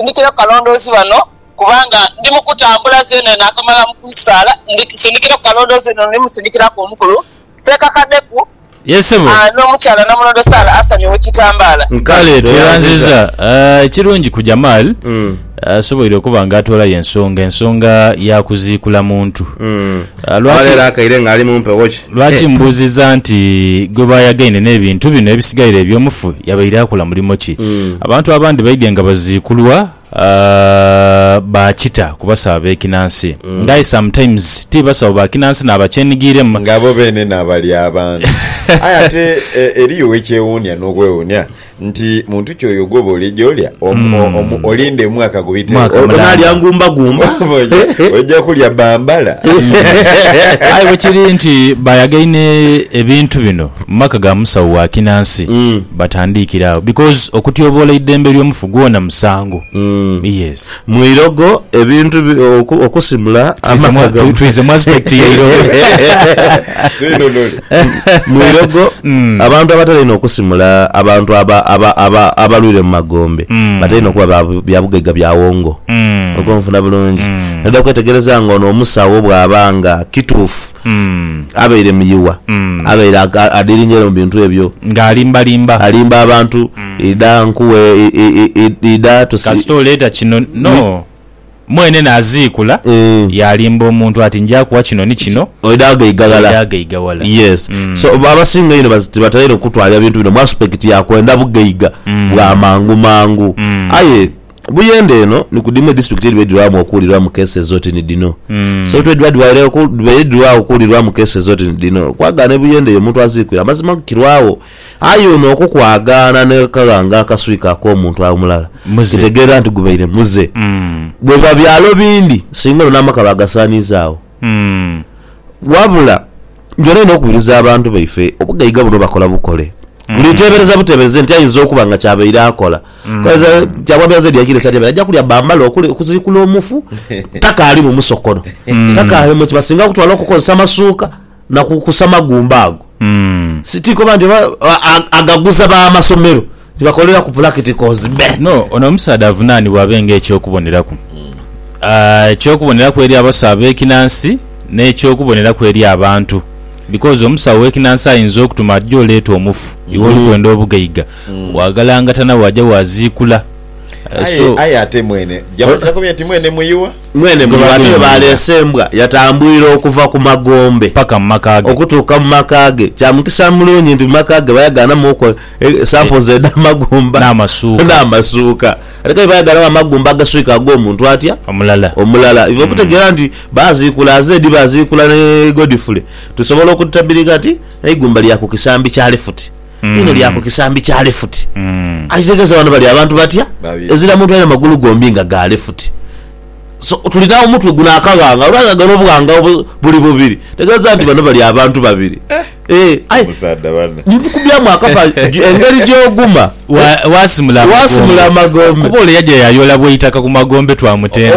Sindikira kukalondoozi ghano, kubanga ndi mu kutambula zeena naakamala mu kusaala. Sindikira kukalondoozi ghano, ni musindikiraku omukulu seekakadeku n'omukyala Namulondo Sarah asamye ekitambaala. Kale tweyanziza. Ekirungi ku Jamal, asoboire okuba nga atoolayo ensonga, ensonga ya kuziikula muntu. Awalera akaire ng'ali mu mpewo ki? Lwaki mbuuziza nti gwe baayagaine n'ebintu bino ebisigaire eby'omufu yabaire akola mulimo ki? Abantu abandi baidhye nga baziikulwa ba kita ku basawo ab'ekinansi nga aye sometimes ti basawo ba kinansi n'abakyenigiremu. Nga bo beene n'abalya abantu. Aye ate eriyo ekyewuunia n'okwewuunia Nti muntu ki oyo gwoba olija olya? Omu, olinde omwaka gubitewo. Onaalya ngumbagumba. Oja kulya bambala. Aye bwekiri nti baayagaine ebintu bino mu maka ga musawo wa kinansi, batandiikire agho because okutyoboola eidembe ly'omufu gwona musango. Yes. Mu irogo ebintu bi, oku, okusimula Twize mwa- amaka twi- twize mu aspect ya irogo. mu irogo Mm. abantu abatali ino okusimula abantu aba- aba- aba- abalwire mu magombe Mm. batali ino kuba ba- bya bugaiga bya wongo Mm. oba onfuna bulungi Mm. noda kwetegereza nga ono omusawo bwaba nga kituufu Mm. abaire muyiwa Mm. abaire aga- adiringire mu bintu ebyo ng'alimbalimba alimba abantu Idha nkuwe, idha tusi. Kasita oleeta kino no. Mwene n'aziikula, yaalimba omuntu ati, Nja kuwa kino ni kino, oidha ghagaigaghala. Yes. So, abasinga einho tibatera okutwalira bintu bino mu aspect ya kwenda bugaiga bwa mangu mangu. Aye buyende eno ni ku dhimu edisiturikiti edhibaire dhirwamu okuwulirwamu cases oti ni dhino. So, twedhiba dhibaire dhirwawo okuwulirwamu cases oti ni dhino, kwagala ni buyende eyo omuntu aziikwire, amazima kirwawo. Aye ono okukwagaana n'akaghanga akaswika ak'omuntu omulala Muze. kitegeerera nti gubaire muze. Bwebiba byalo bindi, singa ono n'amaka baagasaaniiza agho. Wabula, njolina inho okubiriza abantu baife obugaiga buno bakola bukole. Buli teebereza buteebereze nti aidha okuba nga ky'abaire akola. Kale Kyamwami azira dya kiirisa atyamire aja kulya bambale okuli okuziikula omufu takaali mu musokono, takaali mu ki, basinga kutwala okukozesa masuuka. na ku kusa magumba ago. Ti koba nti oba agaguza b'amasomero nti bakolera ku pulakitikozi be. No, ono omusaadha avunaanibwa abe ng'eky'okuboneraku. Eky'okuboneraku eri abasawo ab'ekinansi n'eky'okuboneraku eri abantu. Bikoozi omusawo w'ekinansi ayinza okutuma ati jo leeta omufu, iwe oli kwenda obugaiga, waagalangatana waaja waaziikula. Aye ate mwene, ja kuba nti mwene muyugha. Mwene muli bantu be baaleese embwa yatambwire okuva ku magombe paka mu maka ge. okutuuka mu maka ge. Kya mukisa mulungi nti mu maka ge bayagaanamu oku esamples edh'amagumba n'amasuuka. Ate kale bayagaanamu amagumba agaswika ag'omuntu atya? Omulala. Omulala. Iva okutegeera nti baaziikula aze dhi baaziikula ni Godfrey, tusobola okutabiriga nti eigumba lya ku kisambi kya lifuti. Lino lya ku kisambi kya lefuti. Akitegeza wano bali abantu batya? Ezira muntu alina magulu gombi nga ga lefuti. So, tuli na omutwe guno akaghanga olwaghaga n'obughanga obuli bubiri. Ntegeeza nti bano bali abantu babiri. Eh, aye ndikukubyamu akapa engeri gy'oguma waasimula amagombe. Kuba ole yaja yaayoola bw'eitaka ku magombe twamutenda.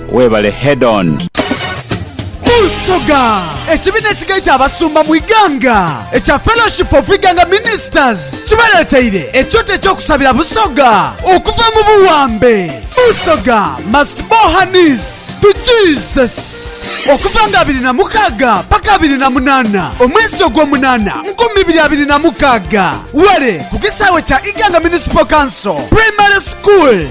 Webale head on. Busoga, Ekibina ekigaita abasumba mu ighanga ekya Fellowship of Iganga Ministers kibaleteire ekyoto ekyokusabira Busoga okuva mu buwambe. Busoga must bow her knees to Jesus. Okuva nga abiri na mukaaga paka abiri na munana omwezi ogwo munana nkumi ibiri abiri na mukaaga, ware ku kisaawe kya Iganga Municipal Council Primary School.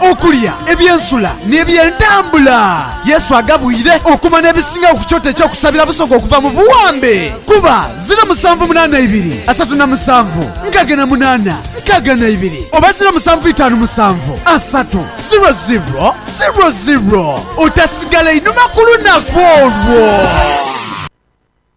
Okulya, eby'ensula, n'eby'entambula. Yesu agabwire okuma n'ebisingawo ku kyoto eky'okusabira Busoga okuva mu buwambe. Kuba, ziro musanvu munaana ibiri, asatu na musanvu, nkaaga na munaana, nkaaga na ibiri, oba ziro musanvu itaanu musanvu, asatu, ziro ziro, ziro ziro. Otasigala inhuma ku lunaku olwo.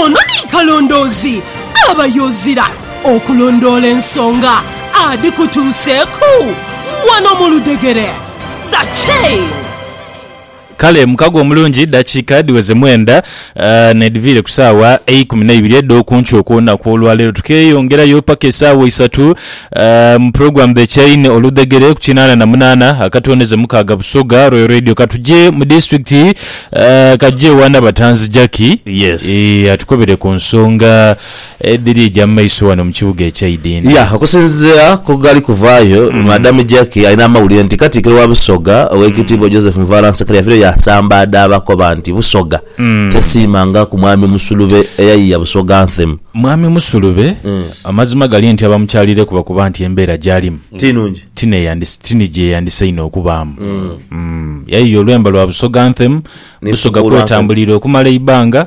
Ono ni kalondoozi aba yozira okulondoola ensonga adhikutuuseeku wano mu ludhegere. The Chain. Kale mukago omulungi dakiika dhiweze mwenda n'edhiviire ku saawa eikumi n'eibiri edh'oku nkyo okw'olunaku olwaleero. Tukeeyongerayo paka esaawa isatu mu pulogulaamu dhe Chain oludhegere ku kinaana na munaana akatooneze mukaaga Busoga Royal Radio. Ka tuje mu disitulikiti Kajiado ewa Nabatanzi Jackie atukobere ku nsonga Edhiri eja mu maiso ghano mu kibuga ekya Idinda. Ya, okusinzira ku ghali kuvaayo, Madam Jackie alina amawulire nti Katikkiro wa Busoga, Oweekitiibwa Joseph Nvara Nsekera yafiirayo yaasambaadha abakoba nti Busoga tesiima nga ku Mwami Musulube eyayiiya Busoga Anthem. Mwami Musulube amazima gali nti abamukyalireku bakoba nti embeera gy'alimu Ti nungi. ti ni gye yandisainhe okubaamu. Yayiiya olwemba lwa Busoga Anthem, Busoga Nesibuula Anthem. kwetambulira okumala eibanga,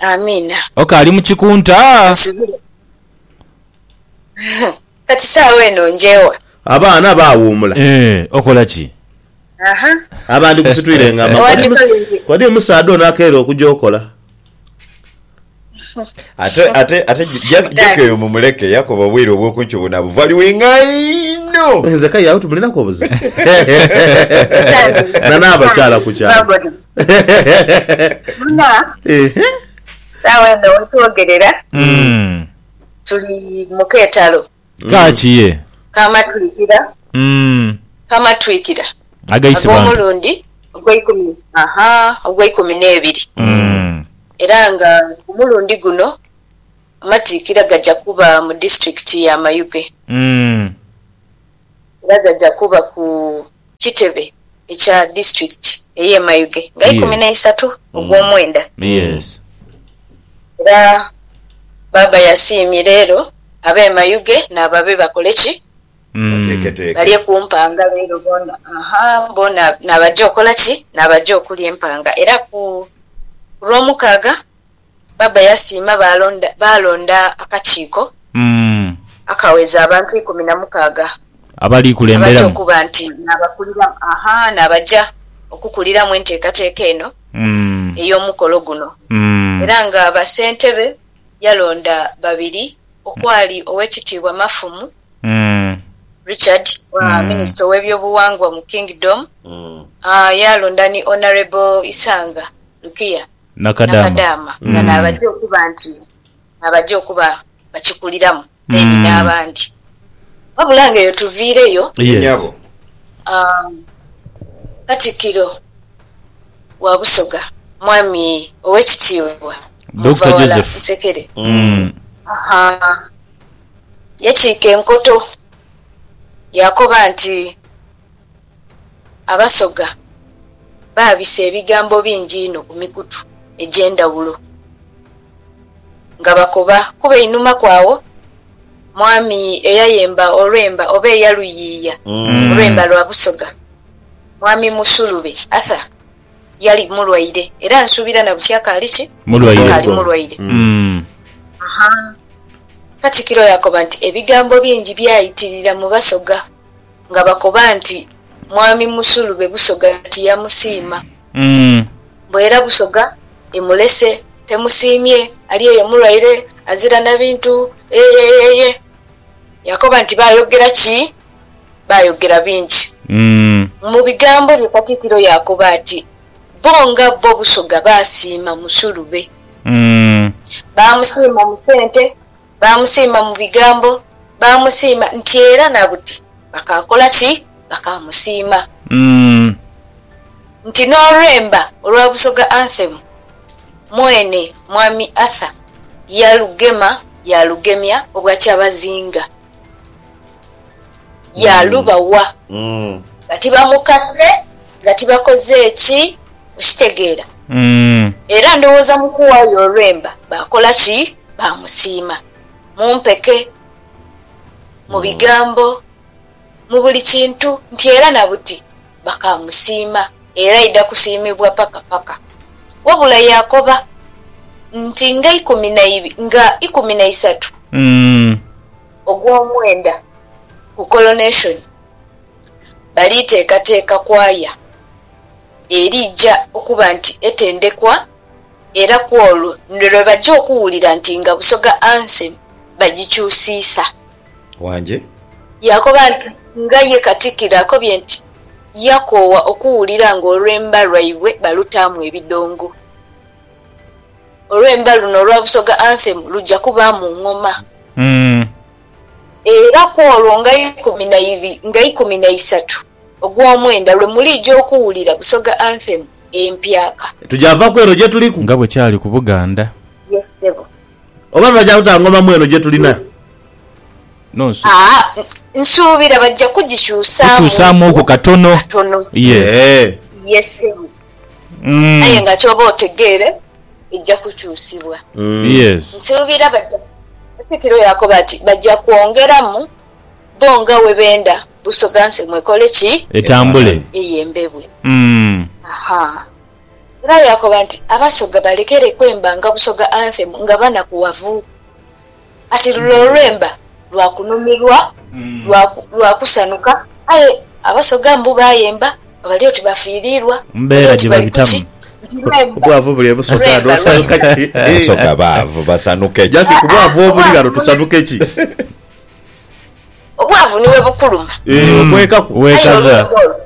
Amiina. Ok ali mu kikunta. Kasubira. Kati sawa eno njewa. Abaana bawuumula. Eeh okola ki? Aha. Abandi gusitwire nga amagulu. Wandikolinze. Kodi omusaadha ono akeera okuja okola? Ate ate ate Jackie oyo mumuleke yakoba obwire obwokunkyo buna buvaluinga inho. Nze kale agho tumulinaku obuzibu. Nana abakyala kukyalo. Muna, Ehe. saawa eno wetwogerera Mm. tuli mu keetalo Kaaki ye. k'amatwikira Mm. k'amatwikira Agaise bantu. ag'omulundi ogw'eikumi aha ogw'eikumi n'ebiri Mm. era nga omulundi guno amatiikira gaja kuba mu disitulikiti ya Mayuge Mm. era gaja kuba ku kitebe ekya disiturikiti ey'e Mayuge nga ikumi na isatu ogw'omwenda. Era Baaba yasiimye leero ab'e Mayuge naabo abebakola ki? Balye ku mpanga leero boona, boona naabagya okola ki? Naabagya okulya empanga. Era ku Lwomukaaga. Bbaabba yasiima baalonda akakiiko akaweza abantu ikumi na mukaaga abaja okuba nti n'abaja okukuliramu enteekateeka eno ey'omukolo guno era nga bassentebe yalonda babiri okwali Owekitiibwa Mafumu Richard minisita ow'ebyobuwangwa mu Kingdom yaalonda ni Honourable Isanga Lukia Nakadaama, nga naabajia okuba nti naabajia okuba bakikuliramu then n'abandi. Wabula nga eyo tuviireyo. Ye nyabo. Katikiro wa Busoga Mwami Owekitiibwa Muvawala Nsekere yakiika enkoto yaakoba nti, Abasoga baabisa ebigambo bingi inho ku mikutu egy'endhawulo nga bakoba kuba einhuma kw'agho Mwami eyayemba olwemba oba eyaluyiiya olwemba lwa Busoga, Mwami Musulube Arthur yali mulwaire era nsuubira na buti akaali ki? Akaali mulwaire. Katikiro yaakoba nti ebigambo bingi byaitirira mu Basoga. nga bakoba nti, Mwami musulube Busoga tiyamusiima. Mbu era Busoga imulese temusiimye, ali eyo mulwaire azira na bintu eeyeeyeeye. Yakoba nti, Baayogera ki? Baayogera bingi. Mu bigambo bye Katikkiro yaakoba ati, Bo nga bo Busoga baasiima musulube. Baamusiima mu sente. Baamusiima mu bigambo, baamusiima nti era na buti bakaakola ki? Bakaamusiima. Nti n'olwemba olwa Busoga Anthem mwene Mwami Arthur yalugema yaalugemya obwa kyabazinga. yaalubawa nga tibamukase, nga tibakoze ki. Okitegeera? Era ndowooza mu kuwaayo olwemba baakola ki? Baamusiima. Mu mpeke, mu bigambo, mu buli kintu, nti era na buti bakaamusiima, era aidha kusiimibwa paka paka. Wabula yaakoba nti nga ikumi na, nga ikumi na isatu. Ogw'omwenda ku Coronation, bali teekateeka kwaya eriija okuba nti etendekwa era kw'olwo ni lwe baja okuwulira nti nga Busoga Anthem bagikyusiisa. Wangi. Yaakoba nti nga ye Katikkiro akobye nti yakoowa okuwulira ng'olwemba lwaibwe balutaamu ebidongo. Olwemba luno olwa Busoga Anthem luja kubaamu ngoma. Era kw'olwo nga ikumi na ibi nga ikumi na isatu ogw'omwenda lwe muliija okuwulira Busoga Anthem empyaka. Tuja va ku eno gye tuliku. Nga bwe kyali ku Buganda. Yes ssebo. Oba baja kuta ngoma mu eno gye tuli na. No nsu. Aa nsuubira baja kugikyusaamuuku. Kukyusaamuuku katono. Katono. Yes. Yes ssebo. Aye nga ky'oba otegeere eja kukyusibwa. Nsuubira baja. Katikiro yaakoba ati, Baja kwongeramu bo nga bwe benda Busoga nsemu ekole ki? Etambule. Eyembebwe. Ha. Era yaakoba nti, Abasoga balekereku emba nga Busoga Anthem nga banakuwavu. Kati lule olwemba lwa kunhumirwa, lwa kusanhuka, aye Abasoga mbu bayemba nga bali oti bafiiriirwa, bali oti bali ku ki? Nti lwemba, lwemba lwaisa ki? Abasoga baavu, basanhuke ki? Obwavu ni bwe bukuluma. Aye olwemba olwo,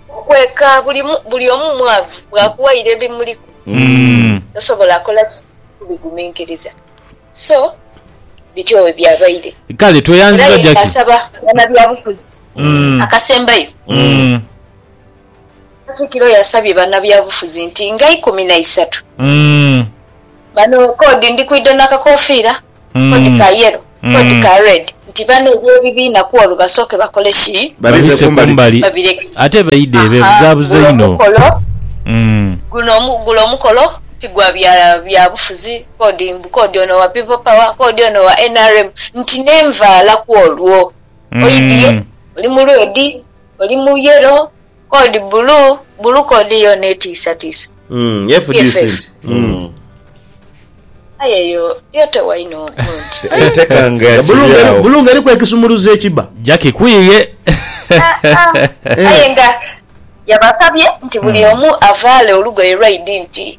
okweka, buli omu mwavu, bwakuwaire ebimuliku, tosobola kola ki? Kubiguminkiriza. So bityo bwe byabaire. Kale tweyanziza Jackie. Era ye asaba banabyabufuzi akasembayo. Katikiro yasabye banabyabufuzi nti nga ikumi na isatu bano kodi ndikwidha nakakofiira, kodi ka yellow, kodi ka red nti bano ebyebibiina kwolwo basooke bakole ki? Babise kumbali babireke. Ate baidhe bebuzabuza inho. Guno omukolo ti gwa bya byabufuzi. kodi mbu kodi ono wa People Power kodi ono wa nrm nti nenvaala kwolwo oidhie oli mu red, oli mu yellow kodi bulu bulu kodi yoona etiisatiisa bff. Aye eyo yo tewaine omuntu. Bulu nga eriku ekisumuluzo ekiba. Jackie kwiiye. Aye nga yabasabye nti buli omu avaale olugoye lwaidi nti.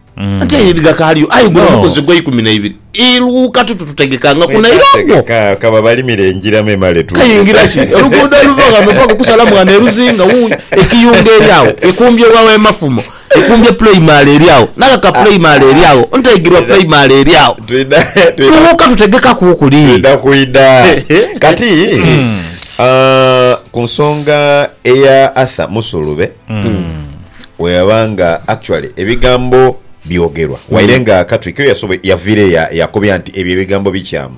Anti aye eri gakaaliyo, aye guno mukozi gwa ikumi na ibiri. Iluuka tuti tutegekangaku naira ogwo. Mweetategeka, ka babalimire engira memale tuuke. Kayingira ki? Oluguudo oluva ghambe mpaku ku Salamwana e Luzinga, wuuyo. Ekiyunga eri agho, ekumbye wa w'e Mafumo, ekumbye Pulaimale eri agho, n'aghaka Pulaimale eri agho, Ntaigirwa Pulaimale eri agho. Twidha, twidha. Luuka tutegekaku kuli. Twidha kwidha. Kati, ah, ku nsonga eya Arthur Musulube, Bweyaba nga actually ebigambo byogerwa waire nga Katwiki oyo yasobo- yaviira eyo ya- yakobya nti ebyo ebigambo bikyaamu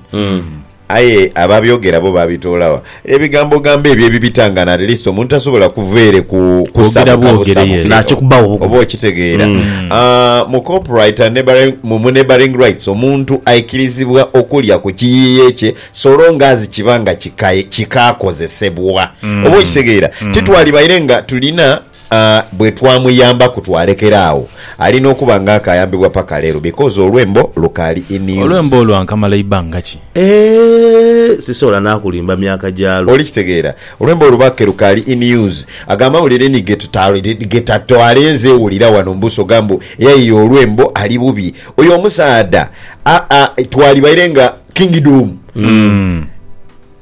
aye ababyogera bo babitoolawa ebigambo gambo ebyo ebibitangana at least omuntu tasobola kuva ere ku Kwogera bwogere, kusabukabusabuka yes. Nakikubawo obugumu. oba okitegeera Ah, mu copyright and neighbouring- mu mu neighbouring rights omuntu aikirizibwa okulya ku kiyiiye kye so long as kiba nga kika- kikaakozesebwa oba okitegeera titwalibaire nga tulina A, Bwe twamuyambaku twalekera agho. Alina okuba nga akaayambibwa paka leero because olwembo lukaali in Olwembo use. olwo ankamala ibanga ki? A, Sisobola n'akulimba myaka gyalwo. Oli kitegeera? Olwembo olubakke lukaali in use. Ago amawulire ni ge tuta, ge tatwale nze wulira wano mbusoga mbu eyayiiya olwembo ali bubi. Oyo omusaadha, a, a, twalibaire nga kingdom. Umm.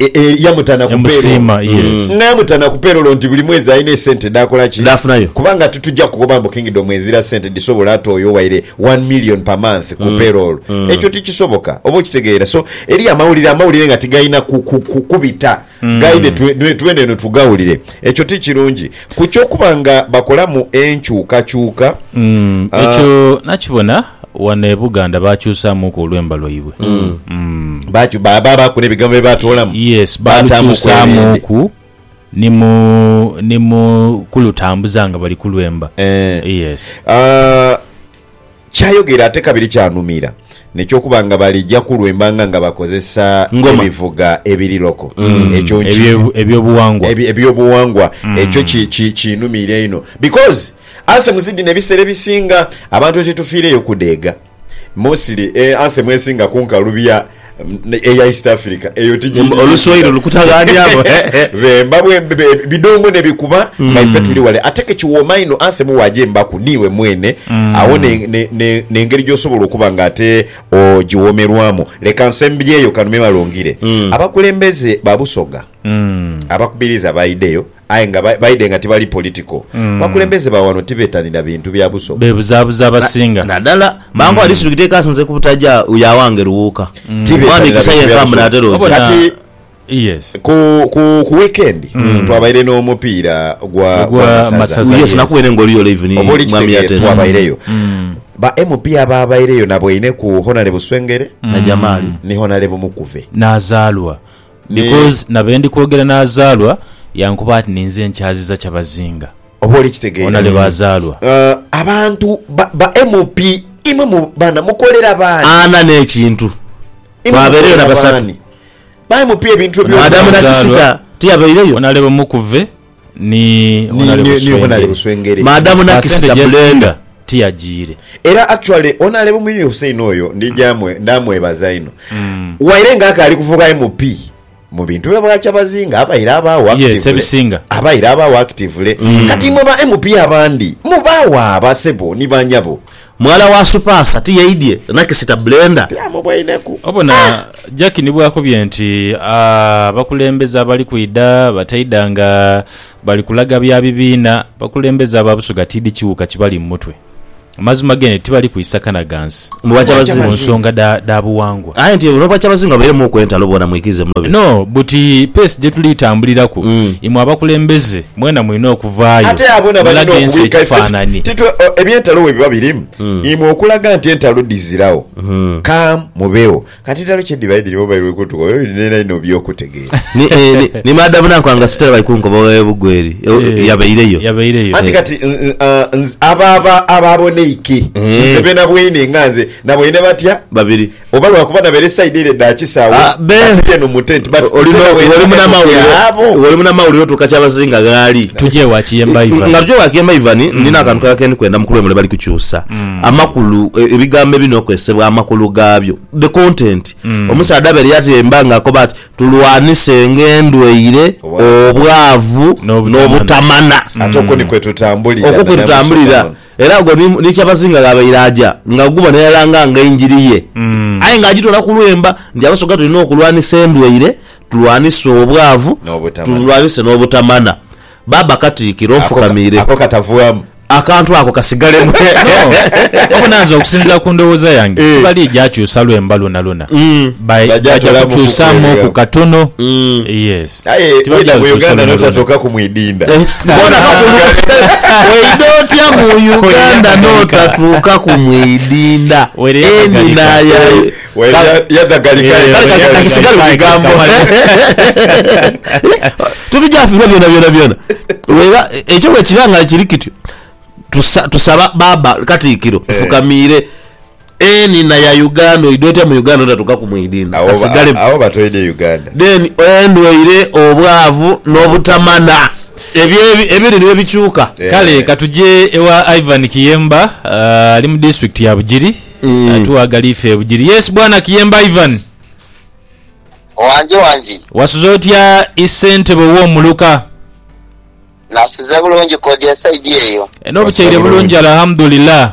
E- e, yamutana ku payroll. Yamusiima, yes. nga yamutana ku payroll nti buli mwezi alina esente dhakola ki Dhafunayo. kubanga tituja kukoba mbu kingdom ezira sente dhisobola ate oyo owaire 1 million per month ku payroll ekyo tikisoboka oba okitegeera so eri amawulire amawulire nga tigalina ku- ku- ku- kubita gaide twe- nwe- twene eno tugawulire ekyo tikirungi ku kyokuba nga bakolamu enkyukakyuka Ah. ekyo nakibona Wano e Buganda baakyusaamuku olwemba lwaibwe. Bakyu- ba- baabaaku n'ebigambo bye baatoolamu. Yes, Baataamuku baalukyusaamuku ni mu ni mu kulutambuza nga bali kulwemba. Eh. Yes. Ah, kyayogera ate kabiri kyanumira nekyokuba nga balija kulwembanga nga bakozesa Ngoma. ebivuga ebiri loko ekyo nki- Ebyo- Ebyobuwangwa. ebi- ebyobuwangwa ekyo ki- ki- kinumiira ino because Anthems dhino ebiseera ebisinga abantu ghetetufiireyo kudheega mostly anthem esinga kunkalu bya eya East Africa eyo tigiriyo Oluswayiri lukutaghanyamu. Bemba bwembe bidongo nebikuba nga ife tuli wale ate kekiwooma inho anthem wagyembaku niiwe mwene agho ne ne ne nengeri gyosobola okuba nga ate ogiwoomerwamu leka nsembyeyo kano memale ongire abakulembeze ba Busoga abakubiriza baidheyo aye nga baidhe nga tibali political. Abakulembeze ba wano tibetanira bintu bya buso. Bebuzabuza abasinga. Nadala mangu ali sirikita ekasinze ku butaja ya wange Luwuuka. Omwana Igisa yenka mbu natera oja. Kati ku wikendi twabaire n'omupiira gwa masaza. Yes nakubaire nga oliyo live ni Mwami Yateesa. Twabaireyo. Ba MP abaabaireyo naboineku Honalebo Swengere ni Honalebo Mukuve. Nazaalwa. Because na be ndi kwogera n'azaalwa yankoba ati ninze nkyaziza Kyabazinga. Oba oli kitegeire. Onale baazaalwa. Abantu ba MP imwe mu bana mukolera bani? Ana n'ekintu. Twabeireyo na basatu. Ba MP ebintu byo. Ono adamu na kisita tiyabeireyo? Onale bumukuve. Ni Honale Buswengere. Maadamu nakisita blender. Tiyajiire. Era actually Honale Mwiiyi Hussein oyo ndija ndamwebaza inho waire nga akaali kuvuga MP mu bintu bya Bwakyabazinga abaire abaagho actively abaire abaagho actively kati imwe ba MP abandi mubaagho aba sebo ni banyabo. Mwala wa Supasa tiyeidhye na kisita blender? Byamubweineku. Obona Jackie ni bwakobye nti abakulembeze abali kwidha bataidha nga bali kulaga bya bibiina, abakulembeze aba Busoga tidhi kiwuuka kibali mu mutwe. Amazima gene tibali kwisa kana gansi Mbu bwa Kyabazinga. ku nsonga dha dha buwangwa. Aye nti n'obwa Kyabazinga bubeiremu ku entalo bwona mwikirize mulobe. No, buti pace gye tuli tambuliraku, imwe abakulembeze Mwena mulina okuvaayo mulage ensi ekifaananyi. Eby'entalo bwe biba birimu, imwe okulaga nti entalo dhiziragho, ka mubeegho. Kati entalo kye dhiba edhirimu oba edhiri kutuka oba edhiri n'era inho by'okutegeera. Ni maada buna nkwanga sitera bali kunkoba oba ebugwa eri yabaireyo. Anti kati abo abaaboneike nze benabweine nga nze naboine batya? Babiri. Oba lwakuba nabeera eside ere edha kisawo but ndi eno mu tent but nzena bwendiba eno ndi agho. Otuuka kyabazinga ghaali. Tuje wa kiyemba Ivan. Nga tuje wa kiyemba Ivan, nina akantu kalala kendi kwenda mukulu wemule bali kukyusa amakulu ebigambo ebirina okozesebwa amakulu gabyo, the content. Omusaadha abeere yatemba nga akoba ati tulwanisenge endwaire, obwavu, nobutamana. Ate okwo ni kwetutambulira. Okwo kwetutambulira. Era ogwo ni, ni Kyabazinga gh'abaire aja nga guba naye alanga nga enjiri ye, aye nga agitwala ku lwemba nti Abasoga tulina okulwanisa endwaire, tulwanise obwavu, N'obutamana. tulwanise n'obutamana. Baaba Katikkiro Ako ka- nfukamiire. ako katavwamu. Akantu ako kasigalemu. No. Wabona nze okusinzira ku ndowooza yange Eh. tibali gyakyusa lwemba lwonalwona. Ba- Bagya Bagya tolamu kukyusaamu kukuwereramu. ku katono. Mm. Yes. Aye weda mu Uganda notatokaku mwidinda Weida otya mu Uganda notatuukaku mwidinda enina yadhagalika Kale kakisigale mu bigambo Titujafiirwa byonabyona Wegha ekyo bwekiba nga kiri kityo tusaba Baaba Katiikiro tufukamiire Eni na ya Uganda oidwa otya mu Uganda notatuka ku mwidini Agho asigalemu. agho batoidhe Uganda. Then endwaire, obwavu no butamana ebyo ebiri nibyo bikyuka. Kale ka tuje ewa Ivan Kiyemba ali mu district ya Bugiri atughe agali ife e Bugiri. Yes bwana Kiyemba Ivan. Wangi wangi. Wasuze otya i ssentebe owo muluka? Nasuze bulungi kodi esaidi eyo. Enho bukyeire bulungi Alhamdulillah.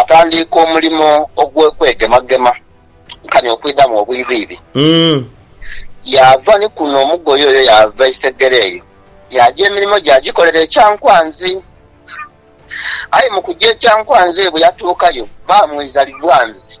Atandiika omulimo ogw'okwegemagema nkani okwidhamu obwiibiibi, yaava ni kuno omugoye oyo yaava isegere eyo, yaaja emirimo gye agikolera e Kyankwanzi. Aye mu kuja e Kyankwanzi ebwe yatuukayo baamwiza Livwanzi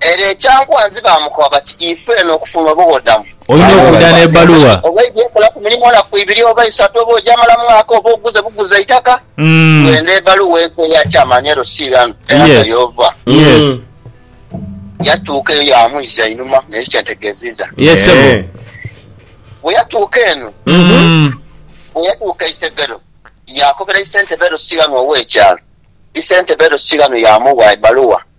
Ere ekyankwanzi baamukoba bati, Ifu eno okufuna obughodamu. Olina okwidha n'ebbaluwa. Oba oidhi okolaku mulimu naku ibiri oba isatu, oba ogyamala mwaka, oba oguze buguzi eitaka, wenda ebbaluwa enkwe eya kyamaani ere osiiranu eraga y'ova. Yatuuka eyo yaamwija einhuma, n'ekyo kye ntegeeziza. Bwe yatuuka eno, bwe yatuuka Isegero, yaakobera isentebe ere osiiranu ow'ekyalo. Isentebe ere osiiranu yaamuwa ebbaluwa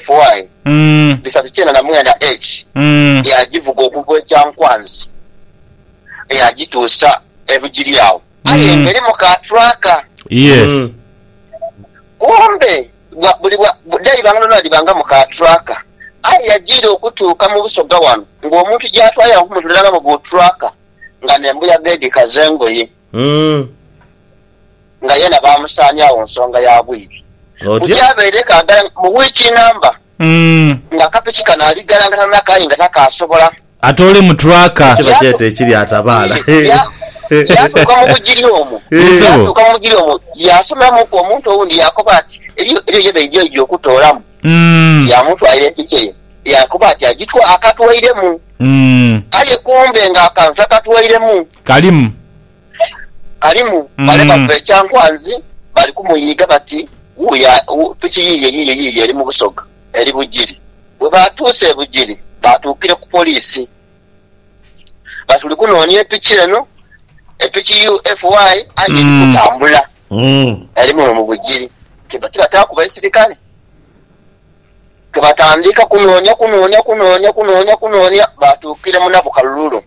FY bisatu kyenda na mwenda H yaagivuga okuva e Kyankwanzi yaagituusa e Bugiryao aye ng'erimu ka tracker. Kumbe dhaiba nga dhona dhibangamu ka tracker aye yajiira okutuuka mu Busoga wano ng'omuntu gy'atwalira nk'omuntu dhiragamu bu tracker nga n'embuyaga edhikaza engoye. Umm. Nga yena baamusaaniagho nsonga ya bwidhi. Otyo. Buti abaire kaagala mu wiiki namba Umm. nga akapiki kano ali ghalangata nako aye nga takaasobola. Atoolemu tracker. Kino kyete ekiri atabaala. Yee, ya, yaatuuka mu bugiri omwo. Yee, sebo. Yaatuuka mu bugiri omwo, yaasumulamuku omuntu owundi yaakoba ati, Eriyo, eriyo ye baidhi oija okutoolamu. Umm. Yaamutwalira empiki eyo, yaakoba ati agitwa, akatwairemu. Umm. Aye kumbe nga akantu takatwairemu. Kalimu. Kalimu, bale bava e Kyankwanzi bali kumuyiiga bati, Wuuyo, piki yiiyo yiiyo yiiyo eri mu Busoga, eri Bugiri. Bwe baatuuse e Bugiri, baatuukire ku poliisi bati, Tuli kunoonia e piki eno, e piki UFY, aye eri kutambula, eri muno mu Bugiri. Tibataaku baisirikale, ke batandika kunoonia, kunoonia, kunoonia, kunoonia, kunoonia, baatuukire mu Nabukalulu.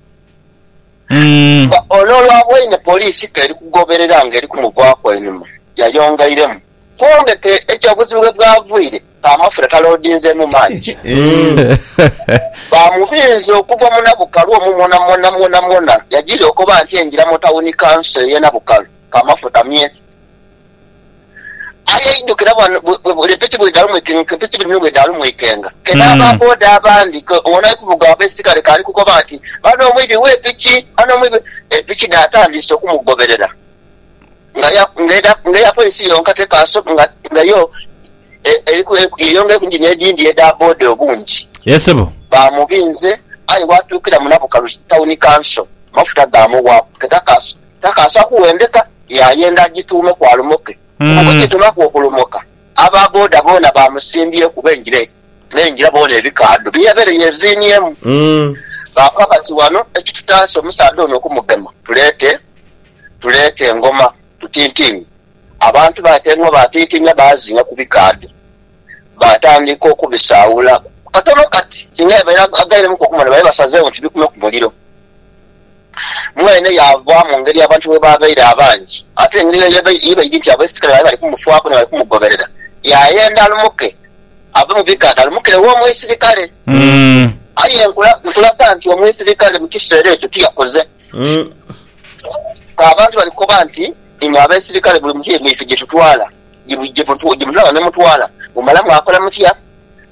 Ii. Nga ono olwaboine poliisi ke eri kugoberera nga eri kumuvaaku einhuma, yayongeiremu, Kwombeke ekyo obuzibu we bwavaire ka amafuta taloodinzeemu mangi. Baamubinza okuva mu Nabukalu omwo mwonamwona mwonamwona yajiria okoba nti engira mu tawuni kanso ey'e Nabukalu ka amafuta mye. Aye eidhukira bwano empeke bwedhaalumwikenga kena aba boda abandi ke ono ali kuvuga ab'eisigale ke ali kukoba nti, Bano omwibi w'epiki, bano omwibi. Epiki dhaatandiise okumugoberera ng'eya polisi yonka tekaasobola nga yo yeyongera ku ngini edhindi edha boda obungi. Baamubinze aye waatuukira mu Nabukalu Tawuni Kanso amafuta gaamuwaaku ke takaasobola. Takaasa kuwendeka yaayenda agituume ku alumoke kuba bwegitumaku okulumoka aba boda boona baamusimbyeku b'engira n'engira boona ebikaadho bye yabaire yeeziiniemu baakoba bati wano ekitutaase omusaadha ono okumugema tuleete tuleete engoma tutintiime. Abantu baatenua baatintiimya baazinga ku bikaadho baatandika okubisaawula katono kati singa yabaire agairemuku okumona babaire basazeegho nti bikume ku muliro. Mwene yaava mu ngeri abantu bwe baabaire abangi, ate engeri eyo ye baidhi nti abaisirkale baali bali kumufaaku ni bali kumugoberera. Yaayenda alumuke ave mu bighanga alumukire wo omwisirkale. Aye nkulaga nti omwisirkale mu kiseera ekyo tiyakoze. Abantu bali kukoba nti, Imwe abaisirkale buli muntu ye myaife gye tutwala, gye mutwala ne mutwala, mumala mwakola mutya?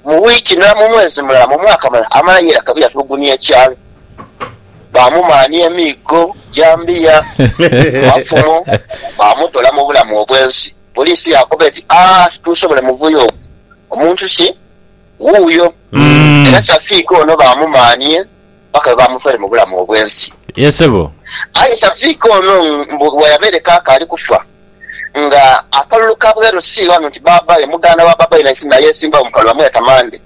Mu wiiki ndala, mu mwezi mulala, mu mwaka mulala amala yera kabiri atulugunia ekyalo. Baamumaania emiigo, jambiya, amafumo, baamutola mu bulamu obwensi. Poliisi yaakoba eti, Aah, tituusobole muvuyo ogwo. Omuntu si wuuyo. Era Safiiko ono baamumaania. paka lwe baamutoile mu bulamu obw'ensi. Yee ssebo. Aye Shafiq ono mbu bweyabaire kaka ali kufa nga akalulu ka bweru si ghano nti baabaye muganda wa baabaye naye sinaye eyeesimbagho mu kalulu bamweta Mande.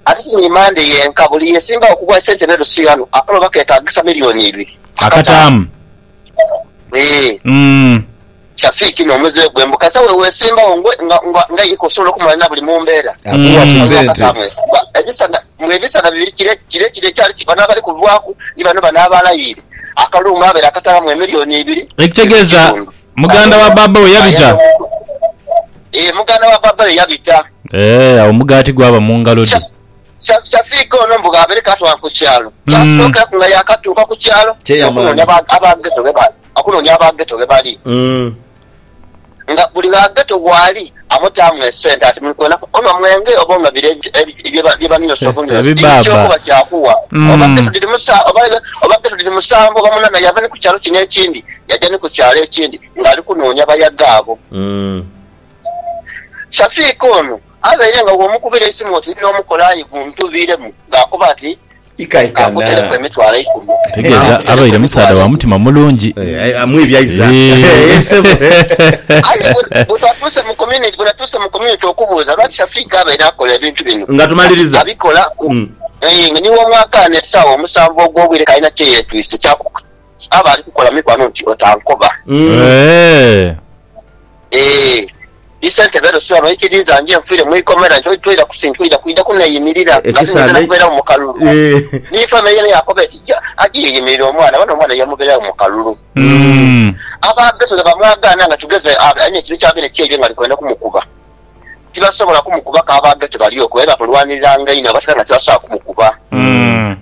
Ate si ni Mande yenka, buli yeesimbagho ku bwa ssentebe Rusii ghano akalulu baketaagisa milioni ibiri akataamu. Eeh. Umm. Shafiq no muze gwe mbu kasa wewesimbawo nga nga nga ika osobola okumala nabuli mumbera. Akuwa ku sente. Ebisana mbu ebisana bibiri kire kire kire ekyali kibano abali kuvaku ni bano bano abalayire akalungu abere akatabamu emillion ibiri Ekitegeza muganda wa baba we yabita. Eeh muganda wa baba we yabita. Eeh awo omugati gwaba mungalo dhe. Shafiq ono mbu bw'abaire kaatwala ku kyalo, kyasookeraku nga yaakatuuka ku kyalo okunoonia aba Ghetto ghe bali, okunoonia aba Ghetto ghe bali. Nga buli gha Ghetto waali amutaamu esente ati, muli kwenaku onhwa mwenge oba onhwa bire bye banyosa obunyosi, dini ki okuba kyakugha? Oba Ghetto dhiri oba Ghetto dhiri musanvu oba munaana, yaava ni ku kyalo kino ekindi yaja ni ku kyalo ekindi ng'ali kunoonia bayaga abo. Shafiq ono abaire nga bw'omukubira eisimu oti n'omukola aye guntubiiremu ng'akoba ati, Ka nkuteleku emitwalo eikumi. Ekitegeza abaire musaadha wa mutima mulungi eeh. Aye bwetwatuuse mu community bwenatuuse mu community okubuuza lwaki Shafiq abaire akola ebintu bino kati abikola eeh nga ni w'omwakaano esaawa omusanvu ogw'obwire k'alina kyeyetwise ky'akukola mikwano nti otankoba. Ee, ni ssentebe Rusiwa n'oikiriiza nje nfiire mu ikomera nti toidha kusintuira kwidha kuneeyimirira nga tinhaiza na kubeeragho mu kalulu. Ni famire yeene yaakoba eti, Gya, aje yeeyimirire omwana, bano omwana yamubeeragho mu kalulu. Aba Beteli baamwagaana nga tugeze alina ekintu ky'abaire kyeibye ng'ali kwenda kumukuba. tibasobola kumukuba kabaage tebali okwo aye bamulwaniriranga inho abatera nga tibasobola kumukuba.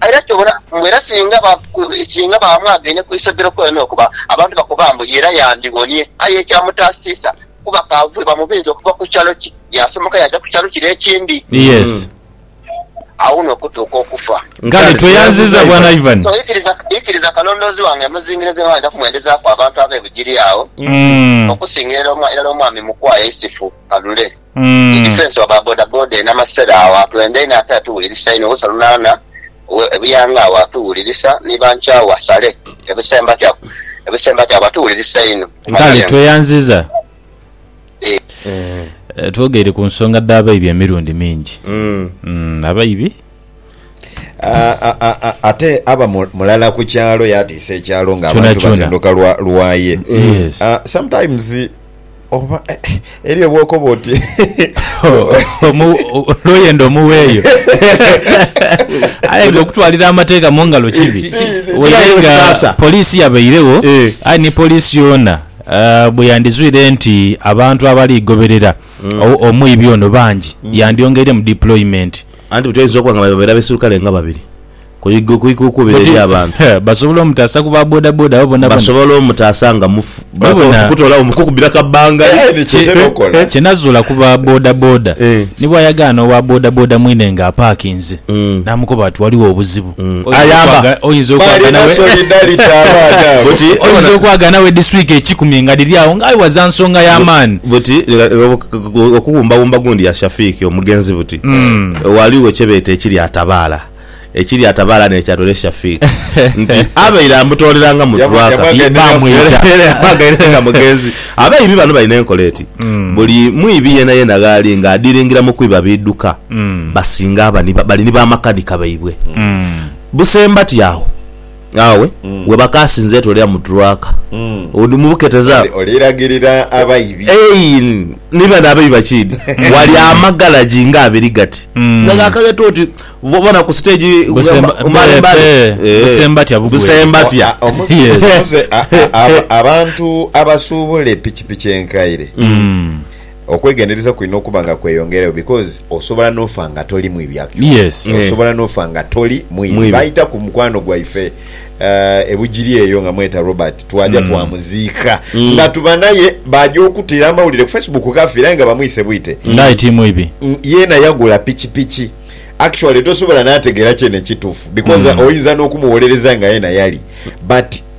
Era kyobona mbu era singa ba singa bamwagaine ku isogero kwene okwo ba abantu bakoba mbu ye era yandiwonie aye ekyamutaasiisa kuba kaavue bamubinza okuva ku kyalo ki yaasomoka yaaja ku kyalo kire ekindi. agho n'okutuuka okufa. Kale tweyanziza Bwana Ivan. So ikiriza ikiriza kalondoozi wange emuzingire ze mwali kumwendezaaku abantu ab'e Bugiri agho okusinga era omwa irala omwami Mukwaya Isifu Kalule ni Difensi wa ba bodaboda e Namasera agho atwenda inho ate atuwulirisa inho, Usa Lunaana owe e Buyanga agho atuwulirisa ni ba Nkyawa Sale e Busembatya e Busembatya agho batuwulirisa inho. Kale tweyanziza. Twogeire ku nsonga dh'abaibi emirundi mingi. Abaibi. Ate aba mulala ku kyalo yaatiisa ekyalo ng'abantu batenduka lwa ye. Sometimes oba eriyo bw'okoba oti. Lw'oyenda omuweeyo. Aye ng'okutwalira amateeka mu ngalo kibi. Kirabe nga poliisi yabairegho aye ni poliisi yoona. Bwe yandizwire nti abantu abali goberera omwibi ono bangi, yandyongeiremu deployment. Anti buti oyinza okuba nga bano babeire abaisirukale nga babiri ku ikuukubira eri abantu. Basobola omutaasa ku ba bodaboda abo boonaboona. Basobola omutaasa nga mufu, okutoolawo mu kukubira kabbangali. Kye nazuula ku ba bodaboda, ni bw'ayagaana owa bodaboda mwine ng'apaakinze, n'amukoba ati, Waliwo obuzibu. Ayamba. Oyinza okwaga nawe. Oyinza okwaga nawe this week ekikumi nga dhiri agho nga aye waza nsonga ya maani. Buti okuwumbawumba gundi ya Shafiq omugenzi buti ghaligho kye beeta ekiryatabaala, ekiryatabaala ne kya dole Shafiq nti abaire amutoolera nga mutwaka bamwita era yamwagaire nga mugenzi. Abeibi bano balina enkola eti buli mwibi yenayena ghali nga adiringira mu kwiba biduka. basinga aba ni bali ni bamakanika baibwe. Busembati agho aghawe we bakaasinza etwe lya Muturwaka. Odi mu buketeza agho. Oli lagirira abaibi. Eei, ni bano abaibi bakiidhi. Wali amagalagi nga abiri gati. Nga gakaghetwa oti bona ku siteegi Busemba- ku mbali mbali. eh, eh, Eh, Busembatya bugwere. Busembatya. A- a- omu- Yes. omuze- a- a- a- abantu abasuubula epikipiki enkaire Okwegendereza kulina okuba nga kweyongerayo because osobola nofa nga toli mwibi actually Yes. Eh. osobola nofa nga toli mwibi. Mwibi. Baita ku mukwano gwaife eh, e Bugiri eyo nga mweta Robert twaja twamuziika nga tubanaye baja okutira amawulire ku Facebook kafire aye nga bamwise bwite Nga aye ti mwibi. Mm, yena yagula pikipiki actually tosobola nategera kyene kitufu because oyinza nokumuwolereza nga yena yali but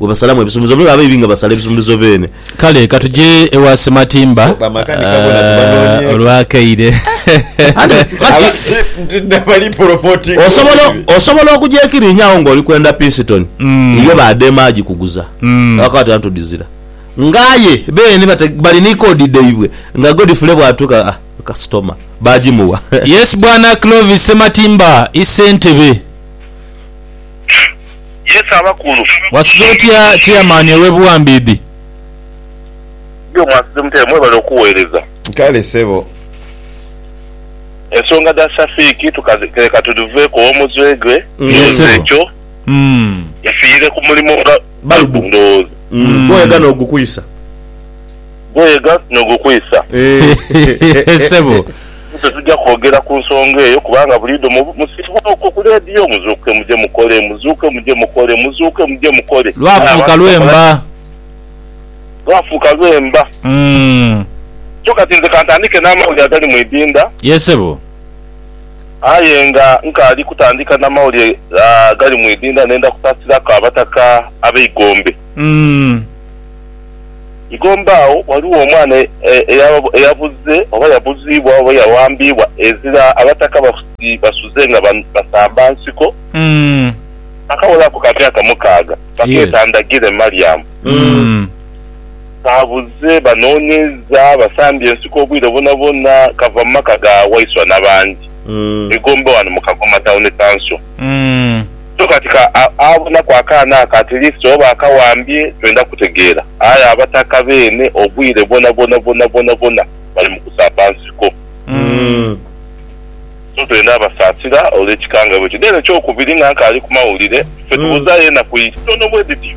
we basalamu ebisumuluzo noolwekyo abaibi nga basala ebisumuluzo beene. Kale ka tuje ewa Ssematimba Sooka amakanika bona tubanoonyeeko. olw'akaire. Anti kati Bali promotinga osobola obubi. osobola okugyekirinya agho nga oli kwenda pisitoni yo baadema agikuguza abakoba ati antudizira nga aye beene bate bali ni koodi dhaibwe nga Godfrey bwatuuka a kasitoma baagimuwa. Yes Bwana Clovis Ssematimba i Ssentebe. Yesu abakulu. Wasuze otya chairman owe buwambiidhi. Yo mwasuze mutya mwebale okuwereza. Kale sebo. Ensonga dha Shafiq leka tudhiveku owomutwe gwe ndowooza ekyo yafiire kumulimo nga balubu ndowooza. Gwoyagala ogukwisa. Gweega no gukwisa. Eeh sebo. Ffe tujja kwogera ku nsonga eyo kubanga buliidho musibwa okwo ku leediyo, muzuuke muje mukole, muzuuke muje mukole, muzuuke muje mukole. Lwafuuka lwemba. Lwafuuka lwemba. Kyo kati nze kantandike n'amawulire agali mu idinda. Ye sebo. Aye nga nkaali kutandika na mawulire agali mu idinda, ndenda kusaasiraku abataka ab'eigombe. Igomba agho ghaligho omwana eyabuze oba yabuziibwa oba yawambiibwa ezira Abataka basuze nga basamba nsiko. Akawolaku ka myaka mukaaga bakeeta Ndagire Mariam. Kaabuze, banoonyeiza, basambye ensiko obwire bwonabwona, kava mu maka ga Waiswa na bangi e Gomba wano mu Kagoma Town Council. So kati ka abonaku akaana ako ati lift oba akawambye twenda kutegeera. Aye abataka beene obwire bwonabwona bwonabwona bwona bali mu kusaba nsiko. So twenda abasaasira olw'ekikangabwa ekyo. Then ekyokubiri nga nkaali ku mawulire, ffe tubuzaayo enaku itono bwedhityo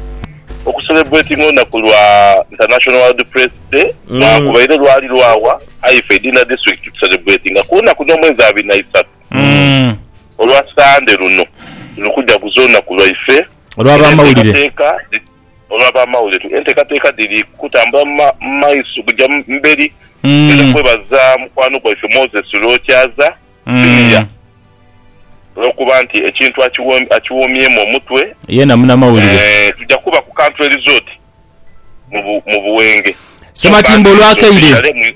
oku celebratinga olunaku lwa International World Press Day lwakubaire lwali lwawa aye ffe Idinda District tucelebratinga ku lunaku n'omwezi abiri na isaatu. Olwa Sande luno tuli kujaguza olunaku lwaife olw'abamawulire. Olw'abamawulire, enteekateeka dhiri kutambula mu maiso kuja mu beri. Twidha kwebaza mukwano gwaife Moses Lwokyaza Junior olw'okuba nti ekintu akiwomyemu omutwe. Yeena munamawulire. Tuja kuba ku Country Resort mu Buwenge. Ssematimba olw'akaire.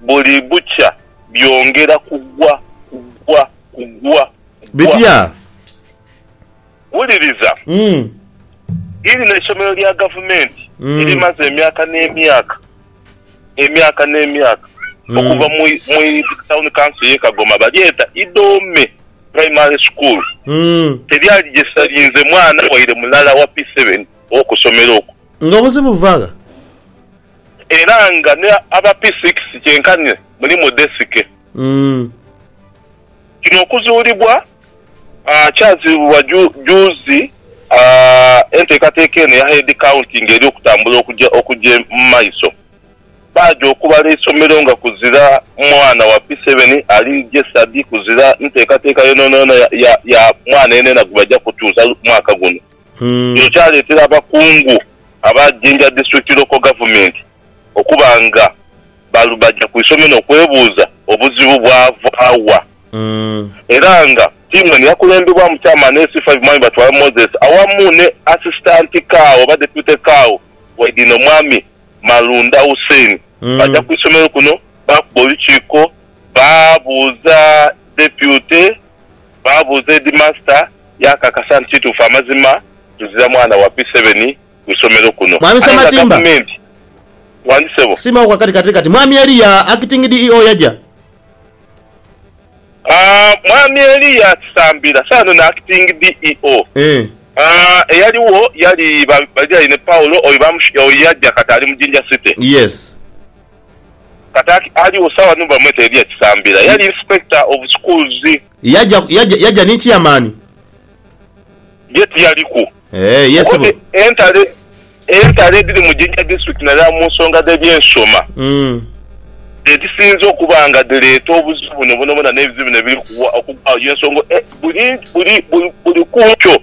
Buli bukya byongera kugwa, kugwa, kugwa, kugwa. Bitya? Wuliriza, Mm. irino eisomero lya gavumenti Mm. erimaze emyaka n'emyaka, emyaka n'emyaka, okuva Mm. mu, mu tawuni kanso y'e Kagoma, balyeta Idoome Primary School. Mm. Teryali gye salinze mwana waire mulala wa P7 ow'oku somero okwo. Nga obuzibu buva gha? Era nga ni aba P-six kyenkanhi mulimu desike. Kino okuzuulibwa kyaziibibwa juuzi enteekateeka eno eya Head County nga eri okutambula okugya mu maiso. Baagya okubala eisomero nga kuzira mwana wa P-seven ali gesadi kuzira nteekateeka yoonayoona ya mwana yenayena gwebaja kutuuza mwaka guno. Kino kyaleetera abakungu aba Jinja District Local Government okuba nga baja ku isomero n'okwebuuza obuzibu bwava wa era nga tiimu eno yakulembebwamu Chairman SC5 Mwami Batwala Moses awamu ne Assistant Cao oba Deputy Cao waidhino Mwami Malunda Hussein baja ku isomero kuno baakuba olukiiko baabuuza Deputy Baabuuza Heedimasita yaakakasa nti kituufu amazima tuzira mwana wa P7 mu isomero kuno Mwami aye nga Ssematimba. Gavumenti. Wani ssebo. Siima oku akati kati kati. Mwami Eria, Acting DEO yaja. Aah, Mwami Eria Kisambira, saano ni Acting DEO. Eeh. Aah, eyaliwo yali ba, Baliraine Paul, oyo bamush, oyo yaja kati ali mu Jinja City. Yes. Kata aligho sawa ni bamweta Elia Kisambira yali inspector of schools. Yaja yaja yaja ni chairman. Ye tiyaliku. Eeh ye ssebo. Okoti entalo entalo edhiri mu Jinja district nadala mu nsonga dh'ebyensoma Umm. dhedhisinze okuba nga dhireeta obuzibu buno bwonabwona n'ebizibu bino ebiri kugwa okugwagho y'ensonga buli buli buli kunkyo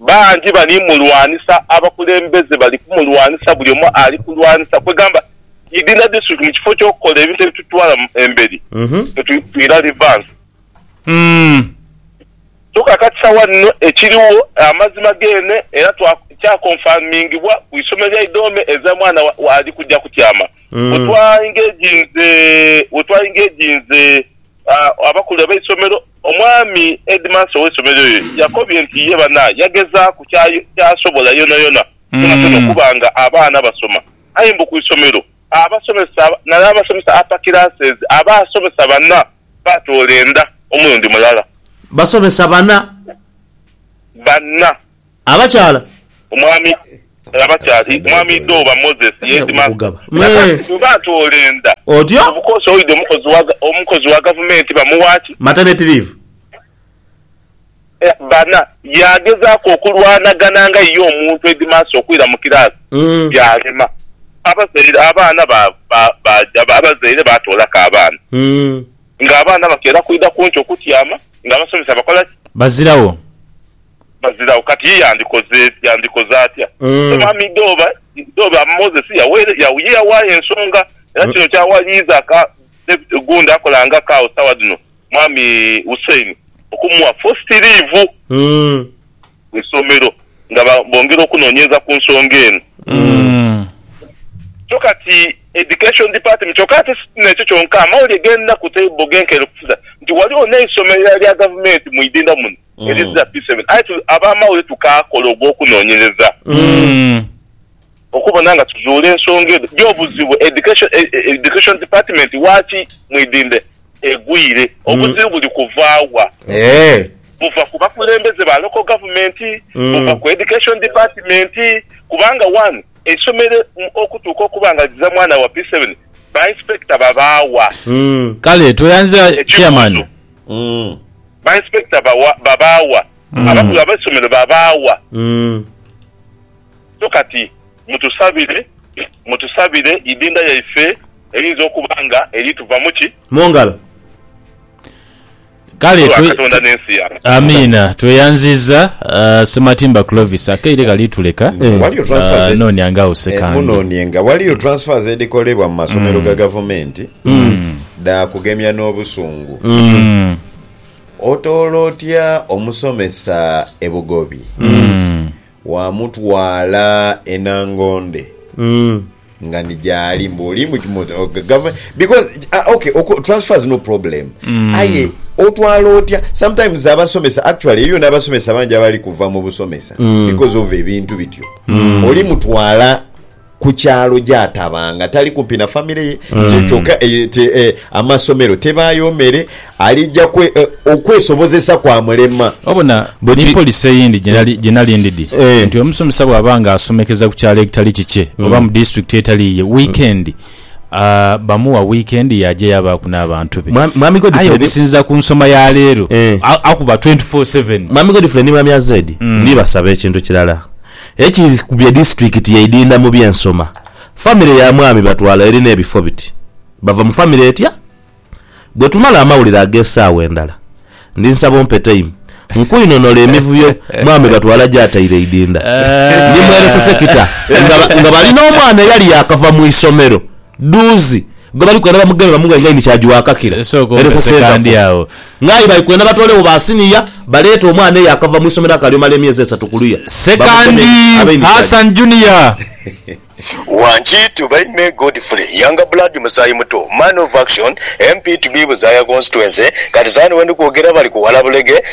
Bangi bali mulwanisa, abakulembeze bali kumulwanisa, buli omu ali kulwanisa, kwegamba idi na district mu kifo kyokukola ebintu ebitutwala emberi mwetwila reverse. So kakati sawa dhino ekiriwo amazima gene era kya confirmingibwa ku isomero lya Idoome eza mwana wa ali kuja kutyama. Wetwa engaginze wetwa engaginze abakulu abeisomero Omwami Headmaster ow'eisomero eryo yakobye nti ye bana yagezaaku ky'asobola yonayona kyonakyoona okuba nga abaana basoma aye mbu ku isomero abasomesa nale abasomesa upper classes abasomesa bana batoola enda omulundi mulala. Basomesa bana? Bana. Abakyala. Omwami Abakyali, Omwami Idooba Moses yeedima nakaati bweba atoola enda kubukoosi oide omukozi wa gavumenti bamuwa ki? Maternity leave. Bana, yaagezaaku okulwanagana nga ye omuntu heedimaasa okwira mu kiraasi byalema. Abazaire abaana baaja abazaire baatoolaku abaana ng'abaana bakeera kwidha kunki okutyama ng'abasomesa bakola ki? Bazirawo. baziragho. Kati ye yandikoze yandikoze atya? Omwami Dooba Dooba Moses yaweere ya ye yawaayo ensonga era kino kyawaliiza ka David Gunda akola nga Kao sawa dhino Mwami Hussein okumugha fosti liivu mu isomero nga ba bongera okunonyereza ku nsonga eno. So kati Education Department kyoka ate si nekyo kyonka amawulire genda ku table genkere okusiza nti ghaligho neisomero erala erya gavumenti mu idinda muno It is just P7. Aye tu, ab'amawulire tukaakola ogw'okunoonyereza okubona nga tuzuula ensonga edho gy'obuzibu Education, e, e, Education Department waaki Mwidinde egwire. Obuzibu buli kuva wa? Eeh. Buva ku bakulembeze ba Local Government, buva ku Education Department, kubanga one, eisomero mm, okutuuka okuba nga liza mwana wa P7, ba Inspector babaawa? Kale tweyanze Chairman. Ekibuuzo. Umm. Ba inspector bawa babaawa. Abakulu abeisomero babaawa. Umm. So kati mutusabire mutusabire idinda yaife eyinza okuba nga eri tuvamu ki? Mungalo. Kale twe Amiina tweyanziza Ssematimba Clovis akaire kali tuleka nonia nga awo sekandi. Munonie nga waliyo transfers edhikolebwa mu masomero ga gavumenti. dhaakugemya n'obusungu. Otoola otya omusomesa e Bugobi? Waamutwala e Nangonde nga ni gyali mbu oli mu mu- o- government because ah, okay oku- transfer is no problem aye otwala otya sometimes abasomesa actually eyo n'abasomesa bangi abali kuva mu busomesa because of ebintu bityo oli mutwala ku kyalo gyatabanga tali kumpi na famire ye mm. kyoka eh, eh, amasomero tebaayo mere alija eh, okwesobozesa kwa mulema obona ni polisi eyindi gyenali ndidi nti omusomesa bwaba nga asomekeza ku kyalo ekitali kikye mm. oba mu disitulikiti etaliiye wiikendi mm. Ah, bamuwa weekend yaja yabaku n'abantu be mwami godfrey okusinza ku nsoma ya leero eh. akuba 24/7 mwami godfrey ni mwami azedi mm. nibasaba ekintu kirala Ekikubye disitulikiti yeidinda mu by'ensoma, famire ya mwami Batwala erina ebifo biti, Bava mu famire etya? Bwetumala amawulire ag'esaawa endala, ndi nsaba ompe taimu nkwinonole emivuyo mwami Batwala gyataire eidinda. Ndi mwerese sekita nga bali n'omwana eyali yaakava mu isomero. Dhuuzi gwe bali kwenda bamugeme bamughe nga aidhi ni kya giwakakira. Esooka Eresa ompese Sentafu kandi agho. Nga aye bali kwenda batoolewoo ba siniya baleete omwana eyakava mu isomero akaali omala emyezi esatu ku luya bamugeme Sekandi abe ni kya Hassan Junior. Wangi to by May Godfrey Younger Blood Musaayi Muto Man of Action MP to be Buzaaya Constituency Kati saano wendi kwogera bali kuwala bulege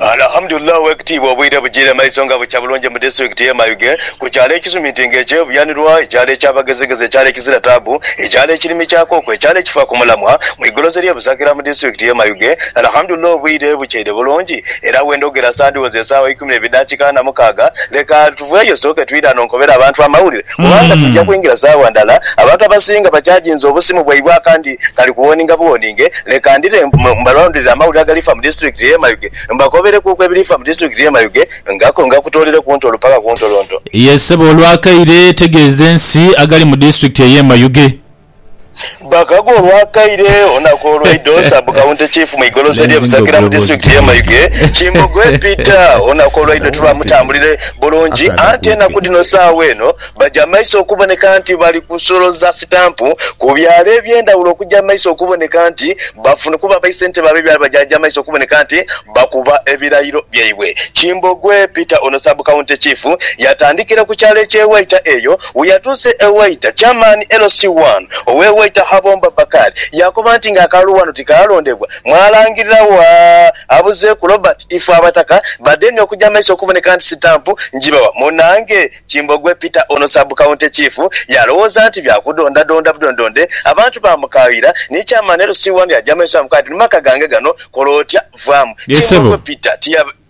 Alhamdulillah owekitiibwa obwire bujire maiso nga bukya bulungi mu disitulikiti ye Mayuge ku kyalo ekisuminti nga ekye Buyanirwa, ekyalo ekya bagezigezi, ekyalo ekizira taabu, ekyalo ekirimi kya kooko, ekyalo ekifa ku mulamwa mu igolozi erye Busakira mu disitulikiti ye Mayuge. Alhamdulillah obwire bukyeire bulungi era wendhogera sandhiwozi esaawa eikumi ne bidakika ana mukaaga leka. Tuveeyo osooke twidhane onkobere abantu amawulire kubanga twidha kwingira sawa ndhala. Abantu abasinga bachaginze obusimu bwaibwe akandi kali ku woninga buwoninge. Leka ndhire mbalondere amawulire agalifa mu disiturikiti y'e Mayuge mbakoberekuuku ebirifa mu disiturikiti y'e Mayuge nga ngakutoolere ku ntolo paka ku ntolonto. Ye ssebo olwakaire tegeeza ensi agali mu disiturikiti ey'e Mayuge. Bakago olwakaire olunaku olweidho Sub County Chief mu igolosa erye Busagila mu Disitulikiti ye Mayuge, Kimbogoe Peter olunaku olweidho tilwamutambulire bulungi anti enaku dhino sawa eno baja maiso okuboneka nti bali kusoloza sitampu ku byalo ebyendhawulo okuja maiso okuboneka nti bafuna kuba aba isentebe abe byalo bajaja maiso okuboneka nti bakuba ebirayiro byaibwe. Kimbogwe Peter ono Sub County Chief yatandikira ku kyalo eky'e Waita eyo weyatuuse e Waita Chairman LC I ow'e Waita Habomba Bakari yakoba nti nga akalulu wano tikalondebwa mwalangirira wa abuzeeku Robert Ifeabataka bademye okuja mumaiso okuboneka nti sitampu njibawa munange Kimbogwe Peter ono Sub County Chief yalowooza nti bya kudondadonda budondonde abantu baamukaayira ni Chairman LC One yaja maiso yaamukoba ati, Ni maka gange gano, kola otya vaamu. Ye ssebo. Kimbogwe Peter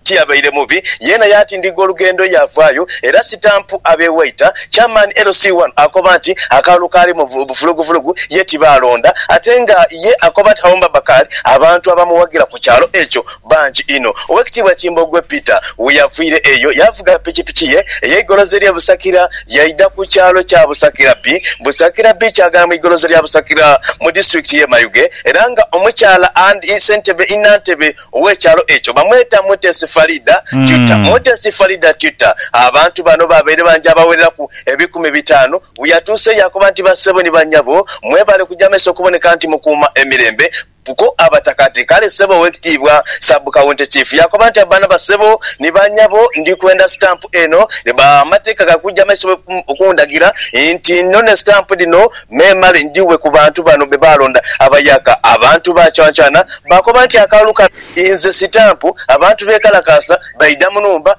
tiyabaire mubi yeena yaatindiga olugendo yaavaayo era Stamp ab'e Waita. Chairman LC One akoba nti akalulu kaalimu bufulugufulugu ye tibaalonda ate nga ye akoba nti Hawomba Bakali abantu abamuwagira ku kyalo ekyo bangi inho. Owekitiibwa Kimbogwe Peter weyaviire eyo yavuga pikipiki ye eyeigolozi erye Busakira yaidha ku kyalo kya Busakira bii. Busakira bii kyagala mu igolozi lya Busakira mu disitulikiti ye Mayuge era nga omukyala and ssentebe ii nantebe owekyalo ekyo bamweta Mutesi Faridah Tuta. Mutesi Faridah Tuta abantu bano babaire bangi abawereraku ebikumi bitaanu weyatuuse yakoba nti bassebo ni banyabo mwebale kuja meso okuboneka nti mukuuma emirembe Bbo abataka ati, Kale ssebo Owekitiibwa Sub County Chief yakoba nti abaana ba ssebo ni ba nyabo ndi kwenda stamp eno ne ba amateeka ga kuja maiso okundagira nti nnone stamp dhino memale ndhighe ku bantu bano be baalonda abayaka abantu ba Chwanchwana baakoba nti akalulu kano inze sitampu abantu beekalakaasa baidha mu nhumba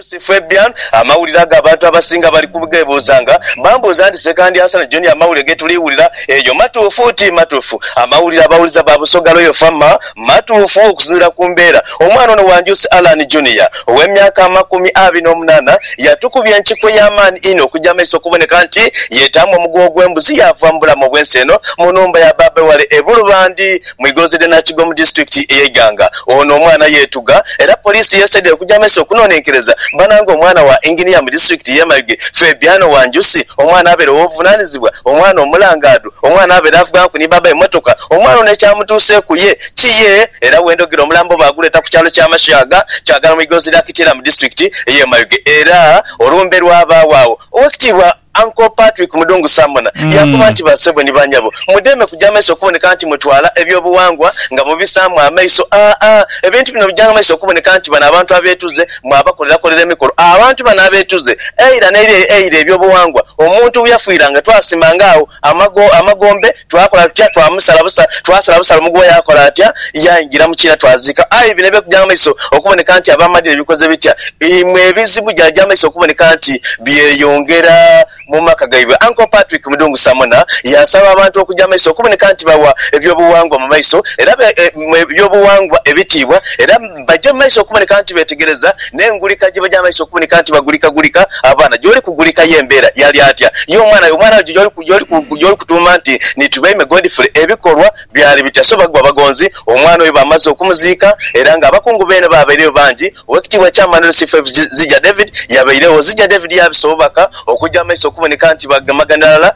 Lucy Fabian, Amawulire ago abantu abasinga bali kughebuuzanga. Bambuuza nti, Ssekandi Hassan John amawulire ge tuli wulira eyo matuufu? Ti matuufu. Amawulire abawuliza ba Busoga Royal Fama matuufu okusinziira ku mbeera. Omwana ono Wanjusi Allan Junior ow'emyaka amakumi abiri n'omunaana yatukubya enkikwe ey'amaani inho okugya amaiso okuboneka nti yeetaamu omuguwa ogw'embuzi yaava mu bulamu obw'ensi eno mu nhumba ya baabe wale e Bulubandi mu igonzi ly'e Nakigo mu disitulikiti ey'e Iganga. Ono omwana yeetuga era poliisi yeesaidhira okugya mu maiso okunonenkereza bana nga omwana wa Inginiya mu disitulikiti y'e Mayuge, Fabiano Wanjusi, omwana abeere ow'obuvunanizibwa, omwana omulangaadhu, omwana abeere avughanku ni baabawe mmotoka. Omwana ono ekyamutuuseeku ye ki ye era wendhogera omulambo baaguleeta ku kyalo Kyamashaga, Kyagala mu igonzi lya Kitila mu disitulikiti ey'e Mayuge era olumbe lwabaagho agho. Owekitiibwa. Uncle Patrick Mudungu Samona yaakoba nti, Bassebo ni banyabo, mudheeme kuja maiso okuboneka nti mutwala eby'obuwangwa nga mubisaamu amaiso. Aa, ebintu bino bijanga maiso okuboneka nti bano abantu abeetuze mwabakolerakolera emikolo. Abantu bano abeetuze, eira n'eira eira eby'obuwangwa omuntu bwe yafiiranga twasimanga agho. amagombe, twakola tutya? Twamusala busa, twasala busa lumu ghuwe yaakola atya? Yaingira mu kiina twaziika. Aye bino eby'okugya mu maiso okuboneka nti ab'amadiini bikoze bitya, imwe ebizibu byagya mu maiso okuboneka nti byeyongera mu maka gaibwe. Uncle Patrick Mudungu Samona yaasaba abantu okugya mu maiso okuboneka nti bawa eby'obuwangwa mu maiso era eby'obuwangwa ebitiibwa era, Baja mumaiso okuboneka nti betegereza n'engulika gye baja mumaiso okuboneka nti bagulikagulika abaana. Gy'oli kugulika ye mbeera yali atya ye omwana? Omwana gy'oli kutuuma nti ni Tubeime Godfrey ebikolwa byali bitya? So bagwa bagonzi omwana oyo bamaze okumuziika era nga abakungu beene baabaireyo bangi. Owekitiibwa Chairman Lucifer Zija David yabaire wo. Zija David yabisa obubaka okuja mumaiso okuboneka nti bagemagana irala.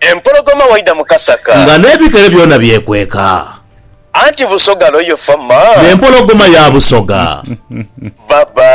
Empologoma waidha mu kasaka. Nga n'ebigere byona byekweka. Anti Busoga lo yo fama. N'empologoma ya Busoga. Bye-bye.